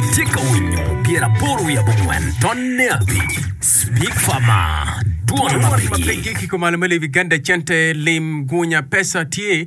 Itye ka winyo pyer aboro wiye abongwen ton ne abic Speak for ma Dwon ma pigi kiko malo me Levi Ganda Cente Lim Gunya Pesa tye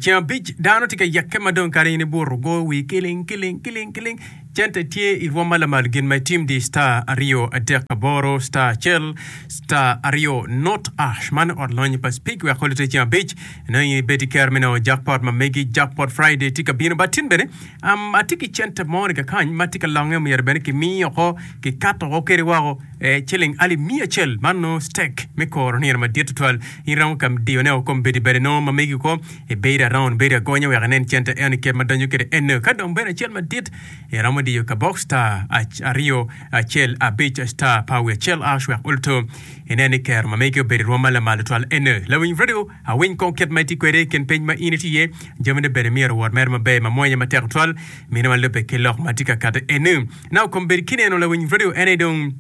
ceng abic dano tye ka yeke ma dong kare in ibuto go wi kiling kiling kiling kiling Cente tye i rwom ma lamal gin ma itim di star aryo adek aboro star acel star aryo not ash man ot lonyo pa Speak wek kole tye ceng abic nongo in ibed i kero me nongo Jackpot ma megi Jackpot Friday tye ka bino bad tin bene Um, atye ki cente mo ni kakany ma tye ka longe, omyero bene kimiyo oko, kikato oko kede woko, e, ciling alip miya acel, man no stek me koro nino madit tutwal. In romo ka diyone o kom bedi bade no ma megi ko, ibedo araun, bedo agonya wek inen cente eno kit ma donyo kede eno. Ka dong bedo acel madit, iromo diyo kabok star ac, aryo, acel, abic, star, power acel, ash wek uluto inen ni kero ma megi obedo irwom ma lamal tutwal eno. Lawiny radio. Awiny kong kit ma itye kwede i kin piny ma in itye iye. Jamine bene myero owot mere maber, ma mwanya matek tutwal, mine ma lubbe ki lok ma tye ka kati eni. Nao kom bedi ki neno lawiny radio eni dong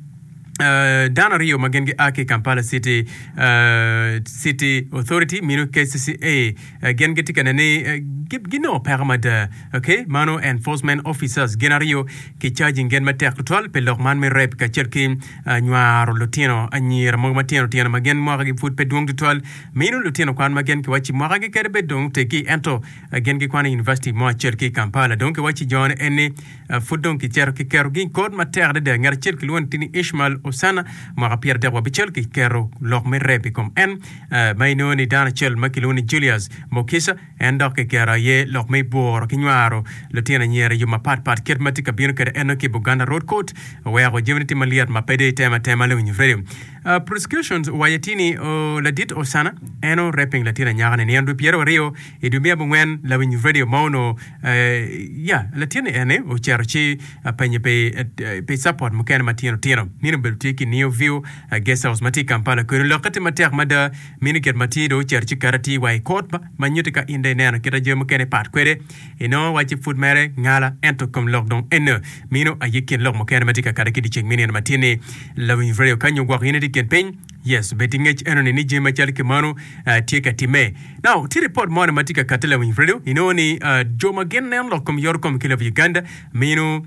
dano aryo ma gin gia ki i Kampala City City Authority mino kcca. Gin gitye ka neno ni ginongo peko mada. Ok, mano enforcement officers gin aryo ki charging gin matek tutwal pi lok man me rape kacel ki nywaro lutino anyira mogo matino tino ma gen mwakagi pud pe dwong tutwal, mino lutino kwan ma gen kiwacci mwakagi kede bedo dong oteggi ento gen gikwano i univaciti mo acel ki i Kampala. Dong kiwacci jone en ni pud dong kicito kiketogi i kor matek adada. Ngat acel kilwongo ni ni Ishmael Osana, mwaka pyeradek wa abicel, kiketo lok me rep i kom en ma inongo ni dano acel ma kilwongo ni Julius Mukisa, En dok kiketo aye lok me bworo ki nywaro lutino anyira i yo mapat pat. Kit ma tye ka bino kwede eno ki Buganda Road Court oweko jamine tye malyet ma pe dong itemo atema leng onyo rego. Prosecutions owaco atir ni ladit Osana en o-raping latin anyaka ni nino dwe pyeraryo aryo i dwe me abongwen lawiny radio ma onongo ya latin ni ene oceto ci penye pi support mukene ma tino tino. Nino obedo tye ki Neo View Guest House ma tye i Kampala kwedun lokke tye matek mada. Mini kit ma tye dong ocito ci ket atir wa i kut ma nyutti ka in dong ineno kit ma jami mukene pat kwede. Inongo wa ci pud mere ngala, ento kom lok dong ene. Mino aye kin lok mukene ma tye ka kati ki dyeceng me nino matin-ni. Lawiny redio ka nyo gwok in itye i kin piny? Yes, bed ki ngec enoni ni jami macalo ki mano tye ka timme. Now, tye ripot moni ma tye ka kati lawiny redio, inongo ni jo ma gin neno lok kom yorokom ki lobo Uganda mino,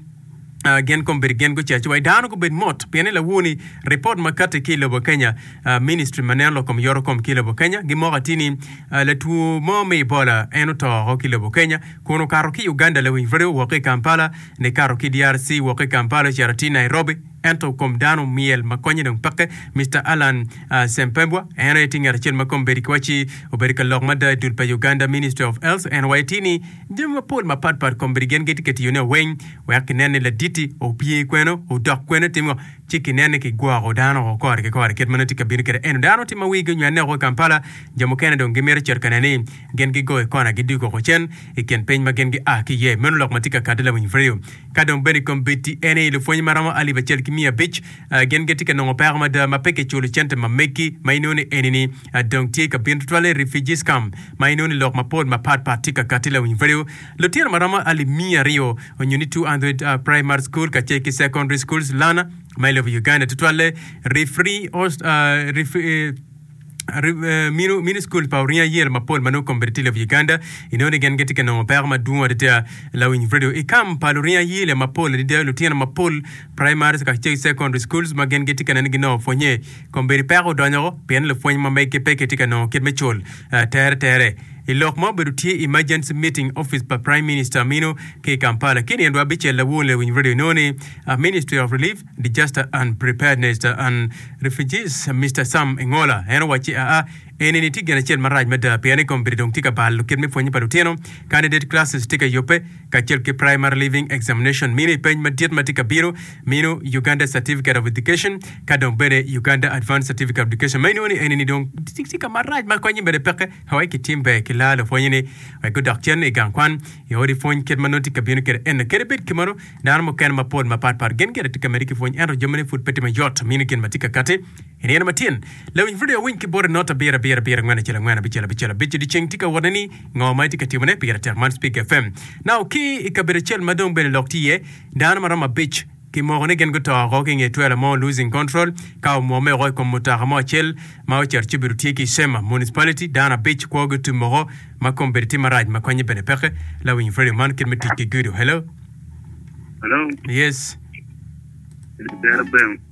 gin kom bedo gin gucaco wa dano gubed mot pien ni lawur ni report ma kati ki lobo Kenya ministry ma neno lokom yoro kom ki lobo Kenya gimoko ati ni latuo mo me Ebola en oto oko ki lobo Kenya kun okato ki Uganda lawiny rwode woko ki Kampala ni kato ki DRC woko ki Kampala ocito ati Nairobi ento kom dano myel ma konye dong peke Mr Alan Sempebwa en aye ti ngat acel ma kom bedo ki waci obedo ka lok mada i dul pa Uganda ministry of health en waye ti ni Jami mapol mapat pat kombeddi gin gitye ka tiyone weng wek kinen ni laditi opye kwene, odok kwene, etimo ngo, ci kinen ni kigwoko dano woko kore ki kore. Kit ma nongo tye ka bino kwede eno, dano tye ma wigi onywene woko i Kampala, jo mukene dong gimito cito ka neno ni gin gigo i kona gidug woko cen i kin piny ma gin gia ki iye. Meno lok ma tye ka kati lawiny Freo. Ka dong bene kombeddi eni, lupwony ma romo alip acel ki miya abic gin gitye ka nongo peko mada ma pe kiculo cente ma megi ma inongo ni enini dong tye ka bino tutwale i refugees camp ma inongo ni lok mapol mapat pat tye ka kati lawiny value. Lutino maromo alip miya aryo onyo ni 200 primary school kacel ki secondary schools lana ma i lobo Uganda tutwale refree host mini school pa orinya yel mapol ma nongo kombeddi tye i lobo Uganda inongo ni gen gitye ka nongo peko madwong adada lawiny value i camp pa lurinya yel mapol adada lutino mapol Praimari ka ki Secondary Schools ma gin gitye ka nen ni ginongo pwonye kombeddi peko odonyo woko pien lupwony ma mege pe kitye ka nongo kit me cul tere tere. I lok ma obedo tye Emergency Meeting Office pa Praime Minista amino ki i Kampala ki i nino dwe abicel lawu onleyo winyo radio inongo ni Ministry of Relief, Disaster and Preparedness and Refugees Mister Sam Engola en owacci aa Enini tye gin acel marac mada pien ni kombeddi dong tye ka balo kit me pwonye pa lutino. Candidate classes tye ka yubbe, kacel ki Primary Leaving Examination mino i peny madit ma tye ka bino mino Uganda Certificate of Education ka dong bene Uganda Advanced Certificate of Education ma inongo ni enini dong tye ka marac ma konye bene peke wek kitim ber ki laa lupwonyeni wek gudok cen i gang kwan i odi pwony kit ma nongo tye ka bino kwede eno. Kadi bed kimeno, dano mukene mapol mapatpat gin gire tye ka medde ki pwony ento jamine pud pe tye mayot mino gin ma tye ka kati. I nino matin, lawiny pud owiny ki bote not abiro abiro abiro angwen acel angwen abicel abicel abic odiceng tye ka wot ne ni ngo ma itye ka timone pire tek man speaker fm nao ki i kabedo acel ma dong bene lok tye iye dano ma romo abic ki moko ni gin guto oko ki nge twela mo losing control ka omwome oko i kom mutoka mo acel ma ocito ci obedo tye ki sema municipality dano abic kwo gi otum oko ma kom bedo tye marac ma konye bene peke lawiny radio man kit me tic ki gudo hello Hello, yes dero bem.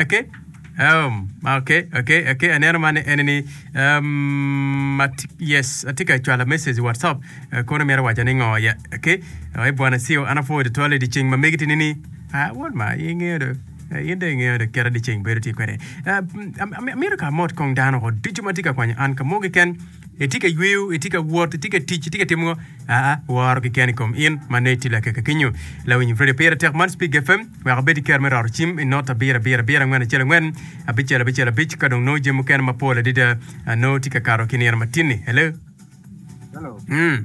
Okay. Um, okay, okay, okay. Aneno man en ni um, at, yes, atye ka cwalo message i WhatsApp. Uh, kono mera wacho ni ngo ya. Okay. Uh, e bwana siyo ana po de tole di ceng ma megi tini ni. Ah, won ma ingeyo do. Uh, in de ingeyo do kera di ceng bedo tye kwede. Uh, amiro ka mot kong dano ko ducu ma tye ka kwanyo an ka mogi ken. Itye ka yweyo, itye ka wot, itye ka tic, itye ka timo ngo? Aa, woro keken i kom in ma nongo itye lakeke kenyo. Lawiny radio pire tek man Speak FM wek abed ki kero me roro cim i not abiro abiro abiro angwen acel angwen abicel abicel abic ka dong nongo jami mukene mapol adada ah, nongo tye ka kato ki nino matinni. Hello? Hello. Mm.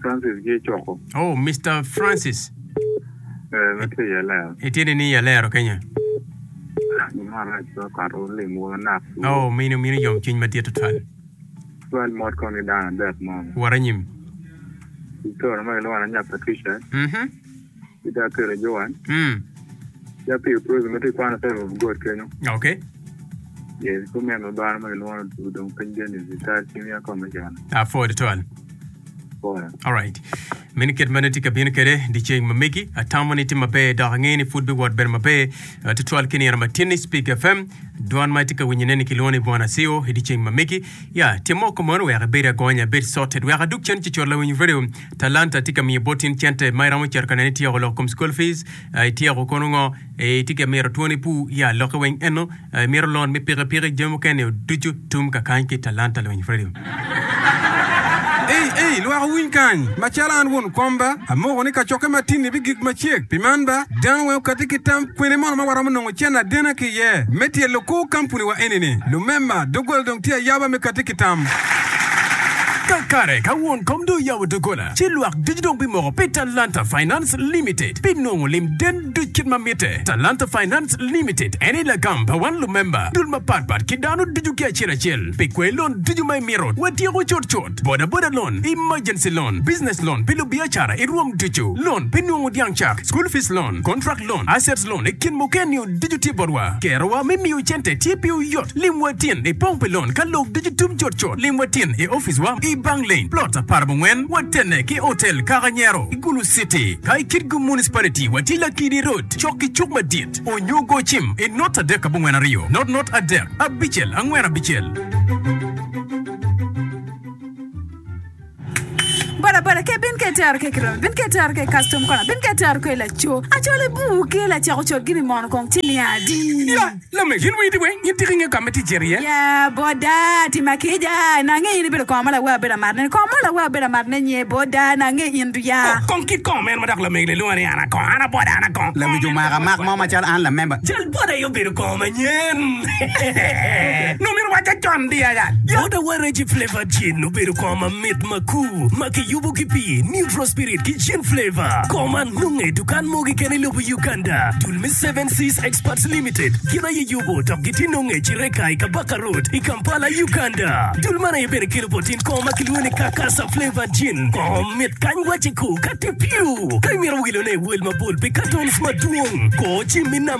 Francis ki Icoko. Oh, Mister Francis. Eh, me tye iye lero. Itye ni ni alero kenya. Mara ci okato limo nak. Oh, mino mino yom cwiny madit tutwal. Twal mot kong ni dano adek mo. Wara nyim. Icoro ma kilwona nya Patricia. Mhm. ki dako kelo Joan. Mm. Ya pi prison ma ti kwano side of God kenyo. Okay. Yes, ko men ma bano ma gilwono udong piny Dennis i tar cim ya kome Joan. Ah, Ford twal. Kore. Alright. Meno kit mane tye ka bino kede diceng ma megi atamo ni tye maber dok angeyo ni pud biwot bedo maber ah, tutwal ki nino ma tinni Speak FM dwan ma itye ka winyo neni kilwongo ni Bwana Sio i diceng ma megi ya timo ko mono wek ibed agonya ibed sorted wek adug cen ci cot lawiny radio Talanta tye ka miyo bot in cente ma iromo cito ka nene ityeko loko kom school fees, ityeko kono ngo, itye ka mito twoni pu ya lokke weng eno, imito loan me piki piki jami mukene nio ducu tum ka kany ki Talanta Luwiny Fredo. Ei ei lwak owiny kany, macalo an won komba, amoko ni kacokke matini bigik macek, pi man ba, dano weng okati ki tam kwene mono ma waromo nongo. Cen adena ki iye me tye lukur kampuni wa eni ni lumema dogola dong tye ayaba me kati ki tam. Kakare ka won kom dong oyabo dogola ci lwak ducu dong bimoko pi Talanta Finance Limited pi nongo lim den duc kit ma mitte. Talanta Finance Limited eni lagam pa wan lumemba dul mapat pat ki dano ducu ki acel acel pi kwer lon ducu ma imito watyeko cut cut. Boda boda loan, emergency loan, business loan pi lubiacara i rwom ducu, loan pi nungu dyang cak, school fees loan, contract loan, assets loan i kin mukene-niu ducu tye botwa. Kerowa me miyo cente tye piwu yot. Lim wa tin i pong pi loan ka lok ducu tum cut cut. Lim wa tin i ofice wa i Bang Lane, plot aparabongwen, watene ki Hotel Kaka Nyero i Gulu City. Ka i Kitgum Municipality, watye Lakidi Road, cok ki cuk madit, onyo go cim i not adek abongwen aryo, not not adek, abicel angwen abicel. Bodaboda ke bin ke tero ke kiromi bin ke tero ke kastom kona bin ke tero ke laco acol ibuu ke lacek ocol gini mono kong ci niya adi Ya, lame, yin wii di we? Yin tika inge kame ti jer iye? Ya boda ti ma kija na ange in ibedo kong ma lawe abedo amaro ne ni kong mo lawe abedo amaro ne nye boda na ange in du ya Oh, kong kit kong meno ma dok lamegi le lwongo ni ana kong, ana boda, ana kong. Lawic omaka mak mo macalo an lamemba. Jal boda aye obedo kong manyen. Nongo myero owacce con di aya. Bota wa Reggie Flavor Gin obedo kor mamit makur ma kiyubo ki pi Neutral Spirit ki Gin Flavor. Kor man nonge i dukan mo keken i lobo Uganda. Dul me Seven Seas Exports Limited gin aye yubo dok gitye nonge i Kireka i Kabaka Road i Kampala, Uganda. Dul man aye bene kelo bot in kor ma kilwongo ni Kakasa Flavor Gin. Kor mit kany wacce ko ka tye piu. Ka imito wilone iwel mabol pi katons madwong, kor cim i namba.